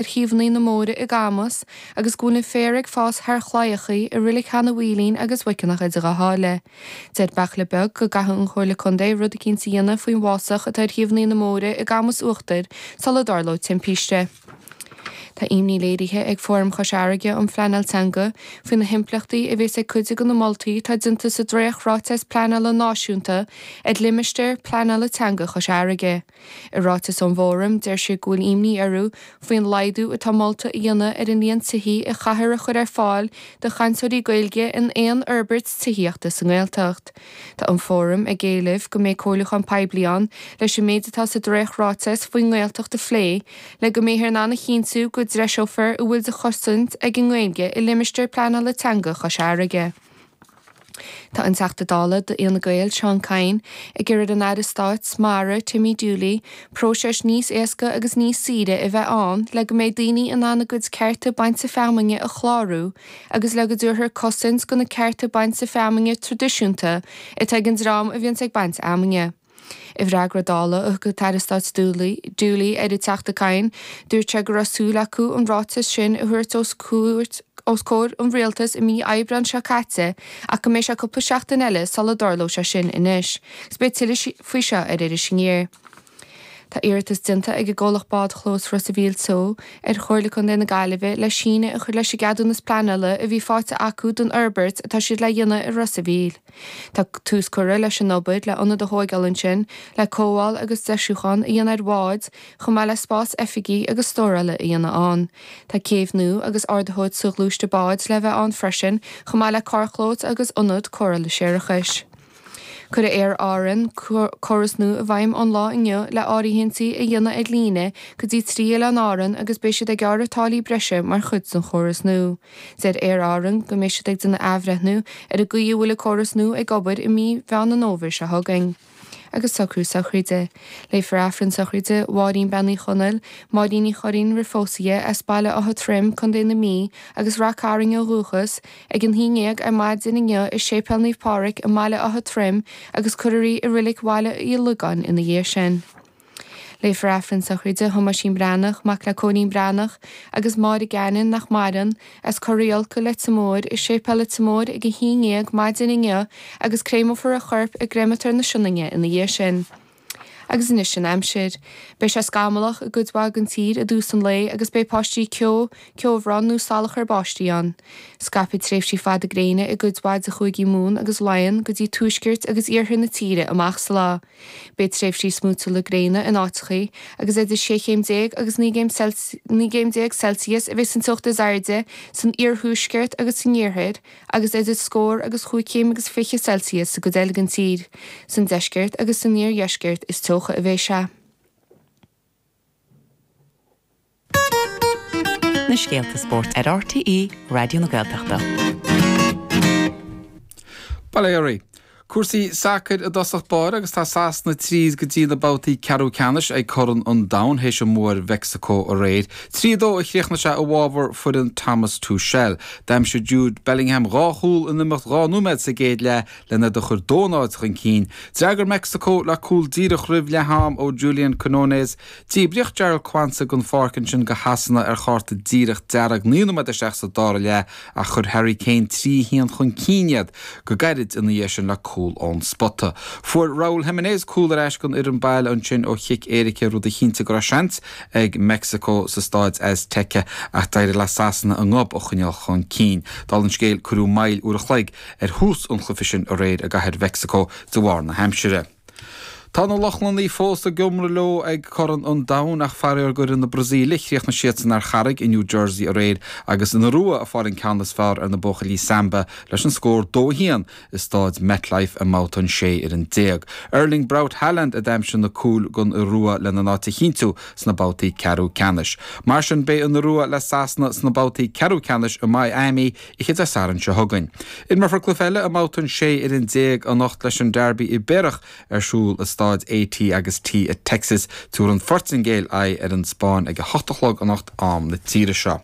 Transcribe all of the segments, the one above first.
ar thaobhannaí na mbóithre i gCamus agus go bhfuil an féar ag fás thar chlaíochaí i Rilic Cheana Mhaoilín agus Mhuiceanach Idir Dhá Sháile. Deir Beairtle Beag go gcaithfidh an Chomhairle Contae rud eicínt a dhéanamh faoin bhfásach atá ar thaobhannaí na mbóithre i gCamus Uachtair sula dtarlóidh timpiste. Tá imní léirithe ag Fóram Chois Fharraige um Phleanáil Teanga faoi na himpleachtaí a bhéas ag cuid de na moltaí atá déanta sa dréacht-ráiteas pleanála náisiúnta ar Limistéar Pleanála Teanga Chois Fharraige. I ráiteas ón bhFóram, deir siad go bhfuil imní orthu faoin laghdú atá molta a dhéanamh ar an líon tithí a chaithfear a chur ar fáil do chainteoirí Gaeilge in aon fhorbairt tithíochta sa nGaeltacht. Tá an Fóram ag éileamh go mbeidh comhairliúchán poiblí ann leis an méid atá sa dréacht-ráiteas faoin nGaeltacht a phlé le go mbeifear in ann a chinntiú go dtreiseofar a bhfuil de chosaint ag an nGaeilge i Limistéar Pleanála Teanga Chois Fharraige. Tá an Teachta Dála d'Fhine Gael, Seán Kyne, ag iarraidh ar an Aire Stáit Mara, Timmy Dooley, próiseas níos éasca agus níos saoire a bheith ann le go mbeidh daoine in ann a gcuid cearta bainte feamainne a chlárú agus le go dtabharfar cosaint do na cearta bainte feamainne traidisiúnta atá ag an dream a bhíonns ag baint fheamainne. I bhfreagra Dála a thug an tAire Stáit Dooley ar an Teachta Kyne, dúirt sé go raibh súil acu an ráiteas sin a thabhairt os comhair an Rialtais i mí Aibreán seo caite ach go mbeidh sé cúpla seachtain eile sula dtarlóidh sé sin anois agus beidh tuilleadh faoi seo ar Iris Aniar. Tá iarratas déanta ag an gcomhlacht Bádchlós Ros a' Mhíl Teo. ar Chomhairle Contae na Gaillimhe le síneadh a chur leis an gceadúnas pleanála a bhí faighte acu don fhorbairt atá siad le dhéanamh i Ros a' Mhíl. Tá tús curtha leis an obair le ionad a thóigeáil ansin le cothabháil agus deisiúchán a dhéanamh ar bháid, chomh maith le spás oifigí agus stórála a dhéanamh ann. Tá céibh nua agus ardaitheoir soghluaiste báid le bheith ann freisin, chomh maith le carrchlós agus ionad cóireála séarachais. Cuirfidh Aer Árann córas nua i bhfeidhm ón lá inniu le áirithintí a dhéanamh ar líne go dtí trí Oileán Árann agus beidh siad ag gearradh táillí breise mar chuid den chóras nua. Deir Aer Árann go mbeidh siad ag déanamh athbhreithniú ar an gcaoi a bhfuil an córas nua ag obair i mí Mheán an Fhómhair seo chugainn. Agus socrú sochraide. Léifear Aifreann sochraide Mháirín Bean Uí Chonaill, Máirín Ní Churraoin roimh phósadh dhi, as Baile Átha Troim, Co. na Mí, agus Rath Cairn ó dhúchas, ag a haon ndéag ar maidin inniu i Séipéal Naomh Pádraig i mBaile Átha Troim agus cuirfear í i Rilic Bhaile Uí Lógáin ina dhiaidh sin. Léifear Aifreann sochraide Thomáisín Breathnach, mac le Cóilín Breathnach agus Mary Gannon, nach maireann, as Corraigh Olcadh, Leitir Móir, i Séipéal Leitir Móir ag a haon dhéag maidin inniu agus créameofar a chorp i gcréamatóir na Sionainne ina dhiaidh sin. Agus anois an aimsir. Beidh sé scamallach i gcuid mhaith den tír i dtús an lae agus beidh paistí ceo, ceobhrán nó salachar báistí ann. Scaipfidh tréimhsí fada gréine i gcuid mhaith de Chúigí Mumhan agus Laighean go dtí tuaisceart agus iarthar na tíre amach sa lá. Beidh tréimhsí smúitiúla gréine in áiteachaí agus idir 16 chéim agus 19 céim Celsius a bheidh san teocht is airde san iarthuaisceart agus san oirthear agus idir scór agus 5 céim agus 20 Celsius sa gcuid eile den tír. San deisceart agus san iardheisceart is teocha a bheidh sé. na scéalta spóirt ar RTÉ Raidió na Gaeltachta. Bail ó Dhia oraibh. Cúrsaí sacair i dtosach báire agus tá Sasana tríd go dtí na babhtaí ceathrú ceannais ag Corn an Domhain théis a mbua ar Mheicsiceo aréir. Trí a dó a chríochnaigh sé i bhfabhar foireann Thomas Tuchel. D'aimsigh Jude Bellingham dhá chúl in imeacht dhá nóiméad sa gcéad leath len iad a chur dó náid chun cinn, d'fhreagair Meicsiceo le cúl díreach roimh leath-am ó Julian Quinones. Díbríodh Jarell Quansah den pháirc ansin do Shasana ar chárta díreach dearg naoi nóiméad isteach sa dara leath ach chuir Harry Kane trí a haon chun cinn iad go gairid ina dhiaidh sin le cúl ón spota. Fuair Raul Jimenez cúl ar ais don fhoireann baile ansin ó chic éirice rud a chinntigh go raibh seans ag Meicsiceo sa Stáid Azteca ach d'éirigh le Sasana a ngob a choinneáil chun cinn. Dála an scéil, cuireadh moill uair a chloig ar thús an chluife sin aréir i gcathair Mhexico de bharr na haimsire. Tá na Lochlannaigh fós ag iomradh leo ag Corn an Domhain ach faraor d'fhoireann na Brasaíle chríochnaigh siadsan ar charraig i New Jersey aréir agus an Iorua ag fáil an ceann is fearr ar na buachaillí Samba leis an scór dó a haon i stáid MetLife i mbabhta an sé fhoireann déag. Erling Braut Haaland a d'aimsigh na cúil don Iorua lena n-áit a chinntiú sna babhtaí ceathrú ceannais. Mar sin beidh an Iorua le Sasana sna babhtaí ceathrú ceannais i Miami Oíche Dé Sathairn seo chugainn, imreofar cluiche eile i mBabhta an 16 fhoireann anocht leis an Derby Ibéarach ar siúl i Stáid A T agus T i dTexas, Tabharfaidh an Phortaingéil aghaidh ar an Spáinn ag a hocht a chlog anocht am na tíre seo.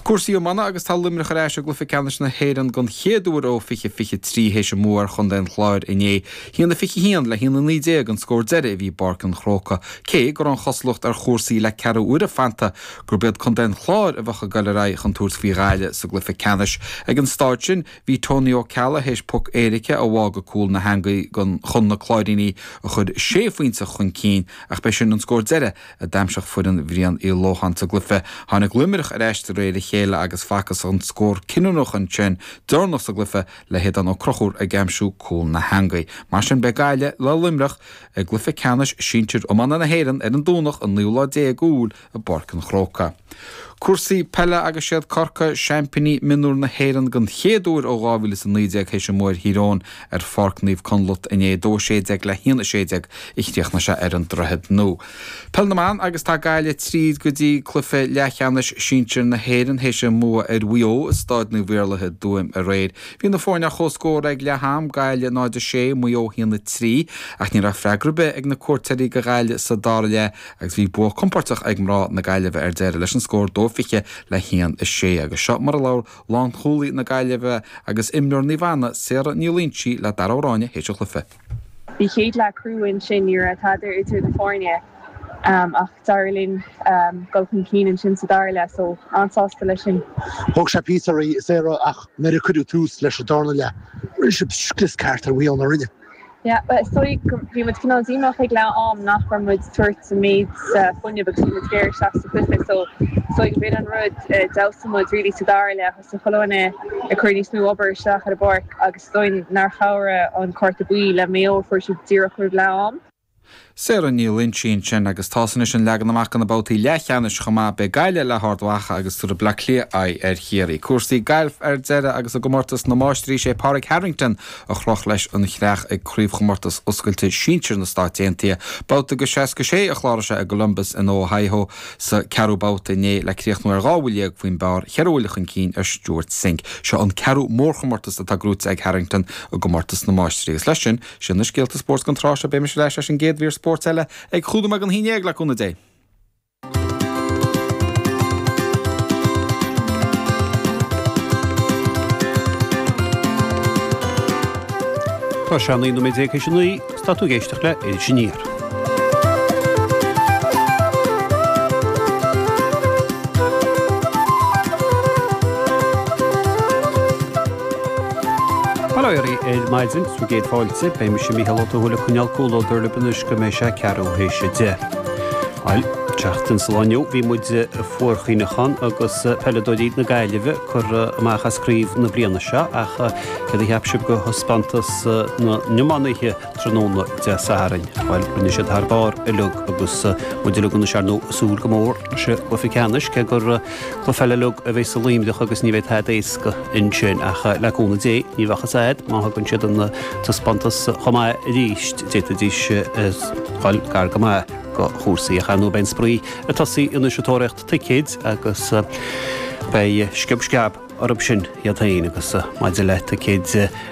Cúrsaí iomána agus tá Luimneach ar ais i gcluiche ceannais na hÉireann den chéad uair ó 2023 théis a mbua ar chontae an Chláir inné, 1-21 le 1-19 an scór deiridh i bPáirc an Chrócaigh cé go raibh an chosúlacht ar chúrsaí le ceathrú uaire fanta gurb iad Contae an Chláir a bheadh ag dul ar aghaidh chun tabhairt faoi Ghaillimh sa gcluiche ceannais. Ag an stáid sin, bhí Tony Ó Ceallaigh théis poc éirice a bhá go cúl na heangaí chun na Cláirínigh a chur sé phointe chun cinn ach b'é sin an scór deiridh a d'aimsigh foireann Bhrian Uí Lócháin sa gcluiche. Tháinig Luimneach ar ais de réir a chéile agus facthas an scór cinniúnach ansin deireanach sa gcluiche le hAodán Ó Conchúir ag aimsiú cúl na heangaí. Mar sin, beidh Gaillimh le Luimneach i gcluiche ceannais sinsir iomána na hÉireann ar an Domhnach an naoú lá déag Iúil, i bPáirc an Chrócaigh. Cúrsaí peile agus siad Corcaigh seaimpíní mionúr na hÉireann den chéad uair ó 2019 théis a mbua ar Thír Eoghain ar Pháirc Naomh Conleth inné 2 16 le 1 16 a chríochnaigh sé ar an Droichead Nua. Peil na mBan agus tá Gaillimh tríd go dtí cluiche leathcheannais sinsir na hÉireann théis a mbua ar Mhaigh Eo i Stáid Naomh Iarlaithe i dTuaim aréir. Bhí na foirne ar chomhscór ag leath am, Gaillimh 0 6, Maigh Eo 1 3, ach ní raibh freagra ar bith ag na cuairteoirí do Ghaillimh sa dara leath agus bhí bua compóirteach ag mná na Gaillimhe ar deireadh leis an scór 2-20 le 1-6 agus seo mar a labhair lánchúlaí na Gaillimhe agus imreoir Naomh Anna, Sarah Ní Loingsigh le Dara Ó Ráinne théis an chluiche. Bhí an chéad leath crua ansin, ní raibh tada idir na foirne ach d'éirigh linn dul chun cinn ansin sa dara leath so an-sásta leis sin. Thóg sé píosa oraibh, Sarah, ach nuair a cuireadh tús leis an darna leath, rinne sibh scrios ceart ar Mhaigh Eo, nár rinne. Yeah, bhuel is dóigh go, bhí muid cineál díomách ag leath am nach raibh muid ag tabhairt an méid sin fuinneamh agus a bhí muid ag iarraidh isteach sa chluiche so is dóigh go b'in an rud a d'fheabhsaigh muid really sa dara leath, thosaigh chuile dhuine ag cur níos mó obair isteach ar an bpáirc agus is dóigh nár chabhraigh an cárta buí le Maigh Eo a fuair siad díreach roimh leath am. Sarah Ní Loingsigh ansin agus tá's anois an leagan amach do na babhtaí leathcheannais chomh maith. Beidh Gaillimh le hArd Mhacha agus tabharfaidh Bleá Cliath aghaidh ar Chiarraí. Cúrsaí gailf ar deireadh agus i gcomórtas na máistrí sé Pádraig Harrington a chroch leis an chreach ag Craobhchomórtas Oscailte Sinsir na Stáit Aontaithe. Babhta go 66 a chláraigh sé i gColumbus in Ohio sa 4ú babhta inné le críochnú ar dhá bhuille dhéag faoin bpar, ceithre bhuille chun cinn ar Stewart Cink. Seo an 4ú mórchomórtas atá gnóite ag Harrington i gcomórtas na máistrí agus leis sin Sin na scéalta spóirt don tráth seo, beidh mise ar ais leis an gcéad mhír spóirt eile ag cúig nóiméad don haon déag, le cúnamh Dé. Tá sé a naoi nóiméad déag tar éis a naoi, is tá tú ag éisteacht le Iris Aniar. Bail ó Dhia oraibh ar maidin, sé bhur gcéad fáilte, beidh mise, Mícheál Ó Tuathail, ag coinneáil comhluadar libh anois go mbeidh sé a ceathrú théis a deich. Bhail, an tseachtain sa lá inniu, bhí muid ag fuarchaoineachán agus peileadóirí na Gaillimhe curtha amach as craobh na bliana seo ach céard a cheap sibh go thaispeántas na n-iománaithe tráthnóna Dé Sathairn. Bhail, rinne siad thar barr uilig agus muid uilig anois, ar ndóigh, ag súil go mór leis an gcluiche ceannais, cé gur cluiche eile uilig a bheas i Luimneach agus ní bheidh tada éasca ansin. Ach le cúnamh Dé, ní bheadh a fhios agat, má thugann siad an taispeántas chomh maith arís, d'fhéadfaidís dul gar go maith go chúrsaí. Ach ar ndóigh beidh an spraoi ag tosaí anois ag tóraíocht ticéid agus beidh sciob sceab. orthu sin iad féin agus maidir le ticéid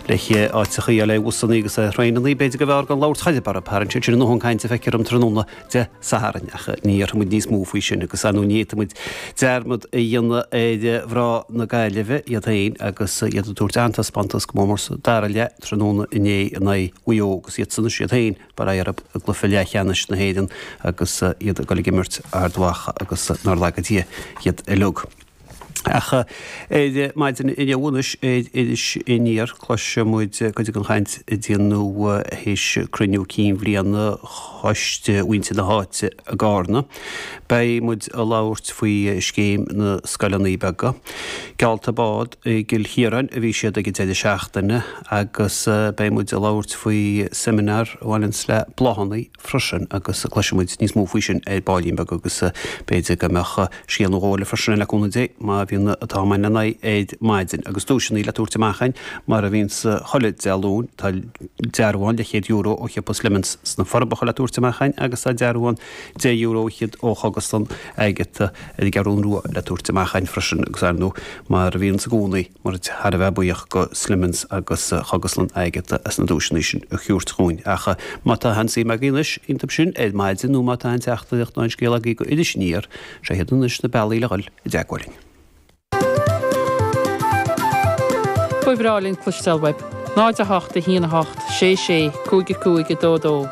le háiteachaí eile i bhusannaí agus i dtraenannaí, b'fhéidir gurbh fhearr gan labhairt choidhche, bara, tharraing siad sin neart cainte faoi tráthnóna Dé Sathairn, ach ní dhéarfaimid níos mó faoi sin agus ar ndóigh ní fhéadfaimid dearmad a dhéanamh ar mhná na Gaillimhe, iad féin agus iad ag tabhairt an-taispeántas go mór mór sa dara leath tráthnóna inné in aghaidh Mhaigh Eo agus iadsan is iad féin, bara, ar aghaidh i gcluiche leathcheannais na hÉireann agus iad ag dul ag imirt Ard Mhacha agus nár laga Dia iad uilig. Ach ar maidin inniu anois ar Iris Aniar cloisfidh muid cuid den chaint a déanadh théis cruinniú cinn bhliana choiste mhuintir na háite i gCarna. Beidh muid ag labhairt faoi scéim na scoileanna beaga. Geallta bád i gCill Chiaráin a bhí thiar ag an deireadh seachtaine agus beidh muid ag labhairt faoi seimineár a bhaineanns le bláthanna. freisin agus cloisfidh muid níos mó faoi sin ar baillín beag agus b'fhéidir go mbeadh scéal nó dhó eile freisin againn le cúnamh Dé, má bhíonn an t-am againn le n-aghaidh ar maidin. Agus duaiseanna le tabhairt amach againn, mar a bhíonns chuile Dé Luain. Tá dearbhán de chéad euro ó shiopa Slemon's sna Forbacha le tabhairt amach againn agus tá dearbhán deich euro fhichead ó Chogaslann Agatha ar an gCeathrún Rua le tabhairt amach againn freisin. Agus, ar ndóigh, mar a bhíonns i gcónaí, Muid thar a bheith buíoch do Slemon's agus do Chogaslann Agatha as na duaiseanna sin a thabhairt dhúinn. Ach má tá aon suim agaibh anois iontub sin ar maidin nó má tá aon teachtaireacht nó aon scéal agaibh do Iris Aniar seo iad anois na bealaí le dhul i dteagmháil linn. Ba bhreá linn cloisteáil uaibh. 0 8 1 8 6 6 5 5 2 2.